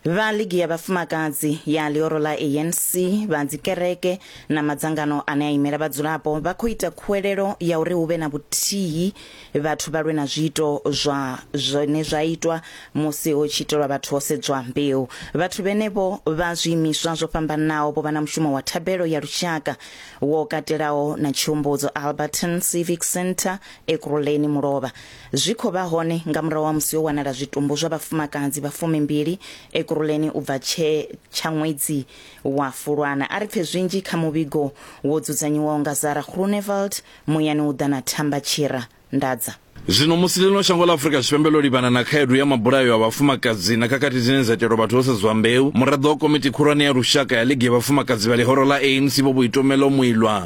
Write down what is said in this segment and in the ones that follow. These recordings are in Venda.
vha ligi ya vhafumakadzi ya ḽioro ḽa anc vha dzikereke na madzangano ane a imela vhadzulapo vha khou ita khuwelelo ya uri hu vhe na vhuthihi vhathu vha lwe na zwiito zwa zwine zwa itwa musi ho tshi itelwa vhathu ho sedzwa mbeu vhathu vhenevho vha zwiimiswa zwo fhambanaho vho vha na mushumo wa thabelo ya lushaka wo katelaho na tshihumbudzo alberton civic centre ekuruleni mulovha Zwi khou vha hone nga murahu ha musi ho wanala zwitumbu zwa vhafumakadzi vha fumimbili Ekurhuleni u bva tshe tsha ṅwedzi wa Fulwana. A ri pfe zwinzhi kha muvhigo wo dzudzanyiwaho nga Zara Groenewald muyani u ḓa na Thamba Tshira Ndadza. Zwino musi ḽino shango ḽa Afrika Tshipembe ḽo livhana na khaedu ya mabulayo a vhafumakadzi na khakhathi dzine dza itelwa vhathu ho sedzwa mbeu, muraḓo wa Komiti Khulwane ya Lushaka ya Ligi ya Vhafumakadzi vha Ḽihoro ḽa ANC Vho Boitumelo Moiloa,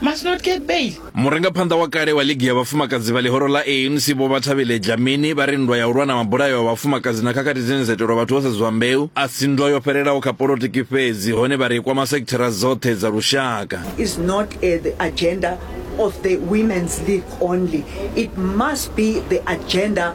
must not get bail murangaphanḓa wa kale wa ligi ya vhafumakadzi vha ḽihoro ḽa anc vho vhathavhile dlamini vha ri nndwa ya u lwa na mabulayo a vhafumakadzi na khakhathi dzine dza itelwa vhathu vho sedzwa mbeu a si nndwa yo fhelelaho kha polotiki fhedzi hone vha ri i kwama sekithara dzoṱhe dza lushaka is not uh, the agenda of the women's league only it must be the agenda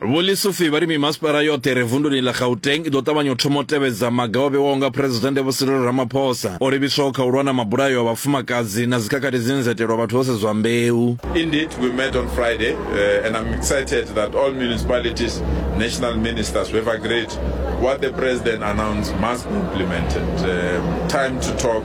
Vho Lesufi vha ri mimasipala yoṱhe re vunduni ḽa Gauteng i ḓo ṱavhanya u thoma u tevhedza maga o vhewaho nga Phresidennde Vho Cyril Ramaphosa o livhiswaho kha u lwa na mabulayo a vhafumakadzi na dzikhakhathi dzine dza itelwa vhathu vho sedzwa mbeu. Indeed, we met on Friday uh, and I'm excited that all municipalities, national ministers, we have agreed what the president announced must be implemented. Um, time to talk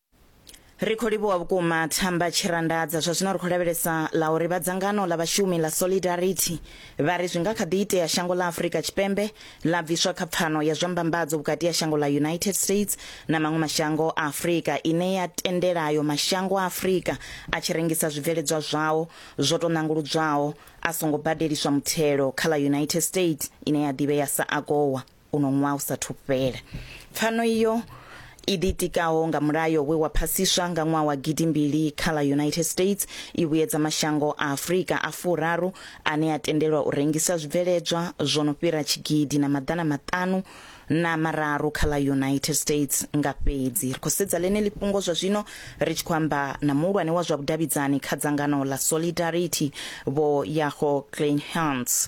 Ri khou livhuwa vhukuma Thamba Tshirandadza. Zwa zwino ri khou lavhelesa ḽa uri vha dzangano ḽa vhashumi ḽa Solidarity vha ri zwi nga kha ḓi itea shango ḽa Afrika Tshipembe ḽa bviswa kha pfano ya zwa mbambadzo vhukati ha shango ḽa United States na maṅwe mashango a Afrika ine ya tendela ayo mashango a Afrika a tshi rengisa zwibveledzwa zwao zwo tou ṋanguludzwaho a songo badeliswa muthelo kha ḽa United States ine ya ḓivhea sa AGOA. uno ṅwaha u sathu fhela. Pfano iyo i ḓitikaho nga mulayo we wa phasiswa nga ṅwaha wa gidimbili kha ḽa United States i vhuyedza mashango a Afrika a furaru ane a tendelwa u rengisa zwibveledzwa zwo no fhira tshigidi na maḓana maṱanu na mararu kha ḽa United States nga fhedzi. Ri khou sedza ḽeneḽi fhungo zwa zwino ri tshi khou amba na muhulwane wa zwa vhudavhidzani kha dzangano ḽa Solidarity Vho Yago Kleinhans.